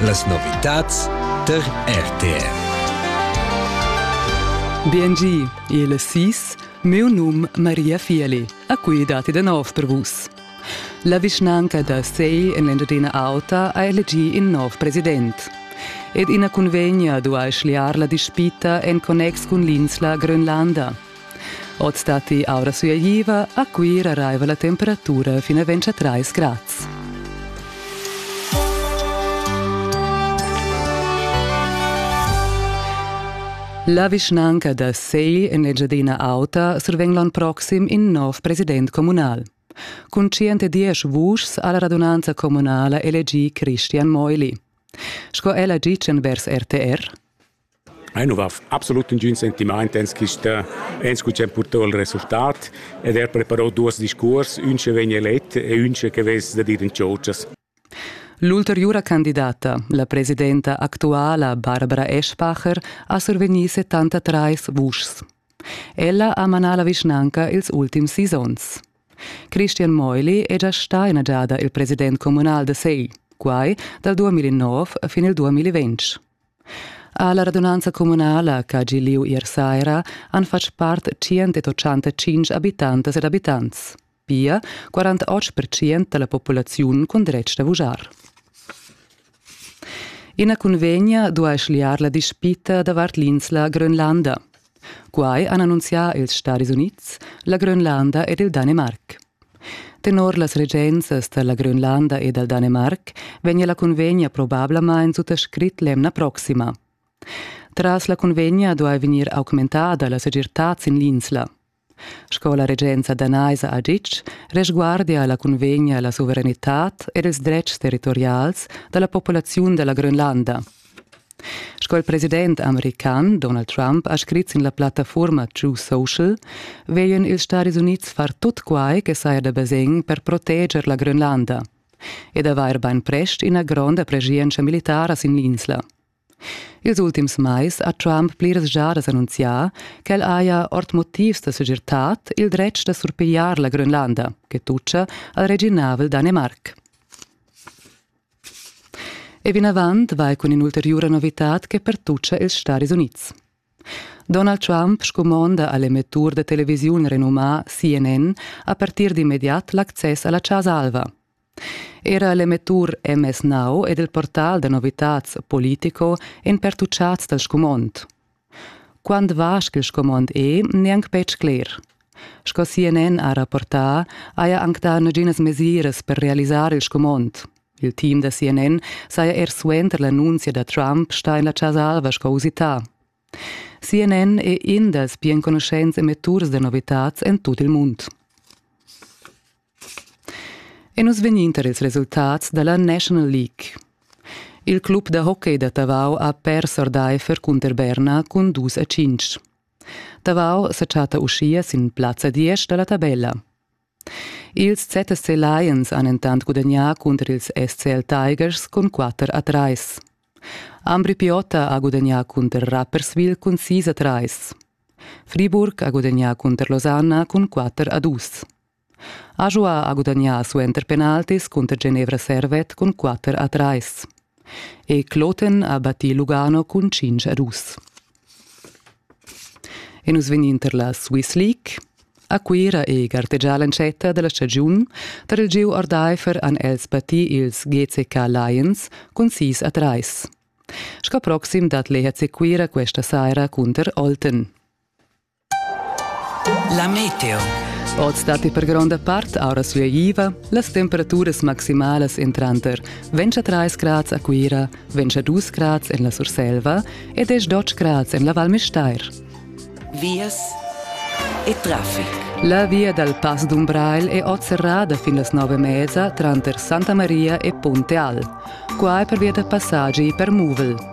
Las novitads tar RTR. BNG, il SIS, meu num Maria Fieli, a cui dati da nov per vus. La vischnanca da Sei en l'Engiadina Auta ha elegì in nov president. Ed ina cunvegna duai schliar la dispita en connex cun l'insla Grönlanda. Oz datti aura suagliva, a Cuira raiva la temperatura fin a 23 grads. La vischnanca da Segl en Engiadina Auta survegn l'ann proxim in nov president communal. Cun 110 vuschs ha la radunanza communala elegì Christian Meuli. Sco ella gitschen vers RTR. Ei nu va absolut ingün sentimaint ens quista ens cu cha purtà il resultat ed er preparò duos discuors, ün che vegn elet e ün che vess da dir in tschotschas. L'ulteriura candidata, la presidenta actuala Barbara Eschbacher, ha survegnì 73 vuschs. Ella ha manà la vischnanca ils ultims sis onns. Christian Meuli è già stà ina giada il president communal da Segl, quai dal 2009 fin il 2020. Alla radunanza communala che ha gi liu ier saira han fatg part 185 habitantas ed abitants, pia 48% dalla populaziun cun dretg da vuschar. Ina cunvegna duai schliar la dispita davart l'insla Grönlanda. Quai han annunzià ils Stadis Unids, la Grönlanda ed il Danemarc. Tenor las regenzas da la Grönlanda e dal Danemarc vegnia la cunvegna probablamain suttascrit l'emna proxima. Tras la cunvegna duai vegnir augmentada la segirtad sin l'insla. Sco la regenza danaisa ha ditg, resguardia la cunvegna la suveranitad ed ils dretgs territorials da la populaziun da la Grönlanda. Sco il president american Donald Trump ha scrit sin la plattafurma True Social, vegien ils Stadis Unids far tut quai che saja da basegn per proteger la Grönlanda ed avair bainprest ina gronda preschientscha militara sin l'insla. Ils ultims mais ha Trump pliras giadas annunzià ch'el haja ord motivs da segirtad il dretg da surpigliar la Grönlanda che tutscha al reginavel Danemarc. E vinavant vai cun in'ulteriura novitad che pertuccia ils Stadis Unids. Donald Trump scumonda a l'emettur da televisiun renumà CNN a partir d'immediat l'access a la Chasa Alva, Era l'emettur MS Now ed il portal da novitads Politico èn pertuchads dal scumond. Quant vast ch'il scumond è, n'è anc betg cler. Sco CNN ha rapportà, haja anc dà naginas mesiras per realisar il scumond. Il team da CNN saja er suenter l'annunzia da Trump stà en la Chasa Alva sco usità. CNN è in dals pli enconuschents emetturs da novitads en tut il mund. E nus vegninter ils resultats da la National League. Il club da hockey da Tavau ha pers ordaifer cunter Berna cun dus a cinc. Tavau sa chatta uschia sin plazza 10 da la tabella. Ils ZSC Lions han entant gudagnà cunter ils SCL Tigers cun quatter a trais. Ambri Piotta ha gudagnà cunter Rapperswil cun sis a trais. Friburg ha gudagnà cunter Losanna cun quatter a dus. Ajoa ha gudagnà suenter penaltis cunter Genevra Servet cun quatter a trais. E Kloten ha battì Lugano cun cinc a dus. E nus vegnin tar la Swiss League. A Cuira è gartegià l'entschatta da la stagiun. Tar il gieu ordaifer han els battì ils GCK Lions cun 6 a 3. Sco proxim dat l'EHC Cuira questa saira cunter Olten. La meteo. Oz datti per gronda part aura sueiva. Las temperaturas maximalas en tranter 23 grads a Cuira, 22 grads en la Surselva e 18 grads en la Val Müstair. Vias e traffic. La via dal Pass d'Umbrail è oz serrada fin las nove mesa tranter Santa Maria e Ponte Al. Qua è per via da passaggi per muvel.